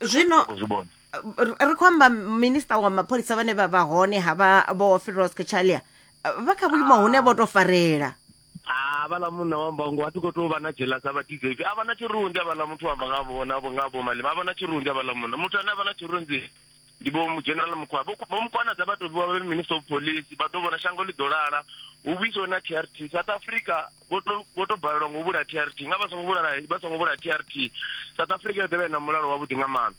zwino ri khou amba minista wa mapholisa vhane vha vha hone ha vha vho firos kachalia vha kha vhuimo hune vho to farela havhala munna wa mbangu a ti khou tou vha na jelasa vha dizeivi a vha na tshirunzi avhala muthu wa amba nga vhona nga vho malima a vha na tshirunzi avhala munna muthu ane a vha na tshirunzi ndi vho general mukwa vho vho mukwana dza vha tou vha vhe minister of police vha ḓo vhona shango ḽi ḓo lala hu vhuiswe na trt south africa vho to- vho to balelwa ngo vhula trt nga vha songo vhulala vha songo vhula trt south africa yo ḓovha i na mulalo wavhuḓi nga maanḓa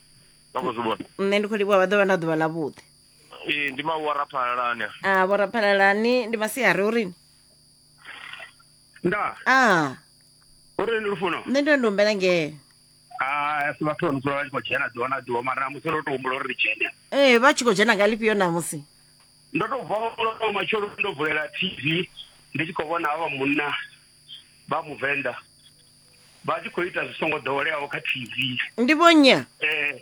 vha khou zwi vhona nṋe ndi khou livhuwa vha ḓo vha na ḓuvha ḽavhuḓi ee ndi mawara phalalani a vhoraphalalani ndi masiari urini nda a uri ndi lufuno nṋe ndo ndi humbela ngee Ah, si vhathu vha no dzula vha tshi khou dzhena ḓuvha na ḓuvha mara namusi ndo tou humbula uri ri dzhene ee vha tshi khou dzhena nga lifhio namusi ndo tou vuwa lwo matshelo ndo vulela tv ndi tshi khou vhona havha munna vha muvenḓa vha tshi khou ita zwi songo ḓoweleaho kha tv ndi vhonya eh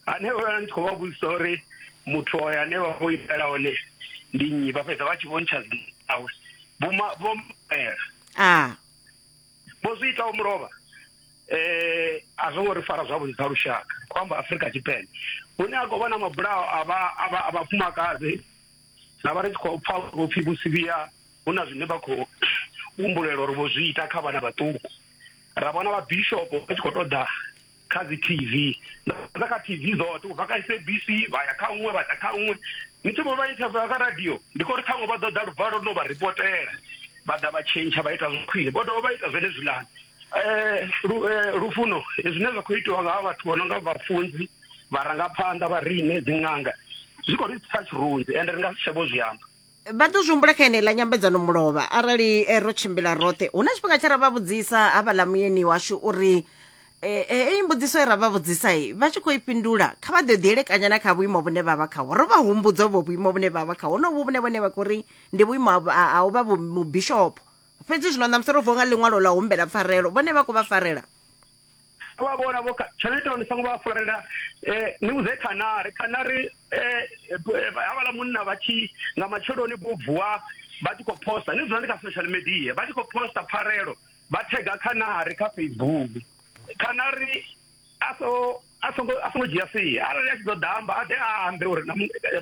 ane vha ndi khou vha vhudzisa uri muthu oyo ane vha khou itela hone ndi nnyi vha fhedza vha tshi vho ntsha dzinawe vho ma- vho mela a vho zwi itaho mulovha eh a zwo ngo ri fara zwavhuḓi sa lushaka khou amba afurika tshipembe hune a khou vha na mabulayo a vha a vha a vhafumakadzi ra vha ri tshi khou pfa vho pfhi vho sivhiya hu na zwine vha khou humbulela uri vho zwi ita kha vhana vhaṱuku ra vhona vha bishopo vha tshi khou ṱoḓa kha dzi tv na kha tv dzoṱhe ubva kha sabc vha ya kha uṅwe vha ḓa kha uṅwe ni tshi vho vha interviewa kha radio ndi khou ri ṱhaṅwe vha ḓo ḓa luvalo no vha ripotela vha ḓa vha tshentsha vha ita zwa khwine vho dovha vha ita zwenezwilani um lufuno zwine zwa khou itiwa nga ha vhathu vho no nga vhafunzi vharangaphanḓa vha riṋe dziṅanga zwi khou ri tsitsa tshirunzi ende ri nga si tsha vho zwi amba vha ḓo zwi humbula kha yeneiḽa nyambedzano mulovha arali eh, ro tshimbila roṱhe hu na tshifhinga tshe ra vha vhudzisa havhaḽa muyeni washu uri eh, eh, heyi mbudziso e ra vha vhudzisa i vha tshi khou i fhindula kha vha ḓo ḓi elekanya na kha vhuimo vhune vha vha khaho ro vha humbudza uvho vhuimo vhune vha vha khaho honovhu vhune vhone vha khou ndi vhuimo ha u vha mubishopo fhedzi zwino ṋamusi ro vuwa nga ḽiṅwalo ḽa humbela pfarelo vhone vha khou vha farela vha vhona vho tshone ita ni songo vha farela eh ni vhudze khanari khanari eh, eh, eh havhala munna vha tshi nga matsheloni vho vuwa vha tshi khou posta ni dzula ndi kha social media vha tshi khou posta pfarelo vha thega khanari kha facebook khanari a so a songo a songo dzhia sia arali a tshi ḓo damba a ḓe a ambe uri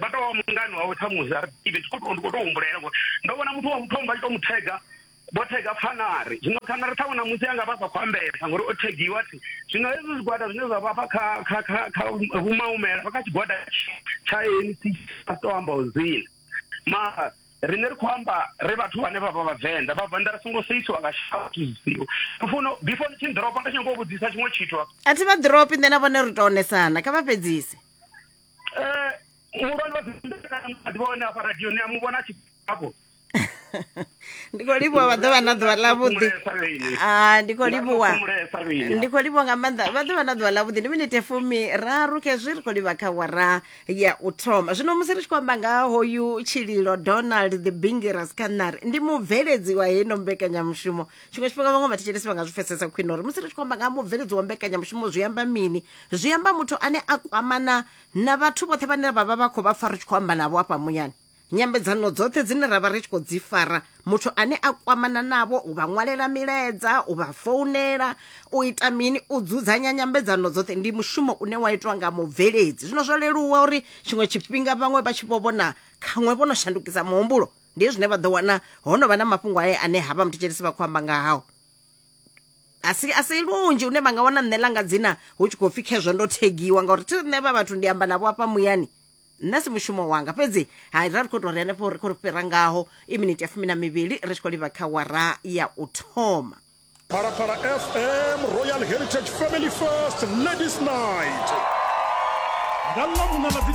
vha tou wa mungani wawe ṱhamusi a ri ḓivhe tshi khou tou ndi khou tou humbulela ngori ndo vhona muthu wa muthombo a tshi tou mu thega vho thega pfanari zwino pfanari ṱhaṅwe na musi anga vha sa khou ambesa ngori o thegiwa thi zwino hezwi zwigwada zwine zwa vha fha kha kha kha kha vhumaumela vha kha tshigwada tsha ANC a to amba u dzina mara rine ri khou amba ri vhathu vhane vha vha vhavenḓa vhavenḓa ri songo seisiwa nga shatiziwa funa before ni tshi ḓiropa ndi tshi nyanga u vhudzisa tshiṅwe tshithu a thi vha ḓiropi nṋe na vhone ri to onesana kha vha fhedzise um muhulwane wa ḓivha hone afha radioni a mu vhona tshi afho ndi khou livhuwa vha ḓo vha na ḓuvha ḽavhuḓi Ah, ndi khou livhuwa ndi khou livhuwa nga maanḓa vha ḓo vha na ḓuvha ḽavhuḓi ndi minete fumi raru khezwi ri khou livha kha wara ya u thoma zwino musi ri tshi khou amba nga ha hoyu tshililo donald the bingeras canary ndi mubveledzi wa heno mbekanyamushumo tshiṅwe tshifhinga vhaṅwe vhathetshelesi vha nga zwi pfesesa khwine uri musi ri tshi khou amba nga ha mubveledzi wa mbekanyamushumo zwi amba mini zwi amba muthu ane a kwamana na vhathu vhoṱhe vhane vha vha vha khou vha pfa ri tshi khou amba navho afha muyani Nyambedzano dzoṱhe dzine ra vha ri tshi khou dzi fara, muthu ane a kwamana navho u vha ṅwalela milaedza, u vha founela, u ita mini, u dzudzanya nyambedzano dzoṱhe ndi mushumo une wa itwa nga mubveledzi. Zwino zwo leluwa uri tshiṅwe tshifhinga vhaṅwe vha tshi vho vhona khaṅwe vho no shandukisa muhumbulo, ndi hezwi zwine vha ḓo wana ho no vha na mafhungo ae ane havha muthetshelesi vha khou amba nga hao. A si a si lunzhi hune vha nga wana nṋe ḽa nga dzina hu tshi khou pfhi khezwo ndo thegiwa ngauri thi nṋe vha vhathu ndi amba navho afha muyani. nṋe si mushumo wanga fhedzi hai ra ri khou tou ri henefho ri khou ri fhira ngaho i miniti ya fumi na mivhili ri tshi khou livha kha wara ya u thoma Phalaphala FM Royal Heritage Family First Ladies Night. Nga ḽa vhuṋa ḽa dzi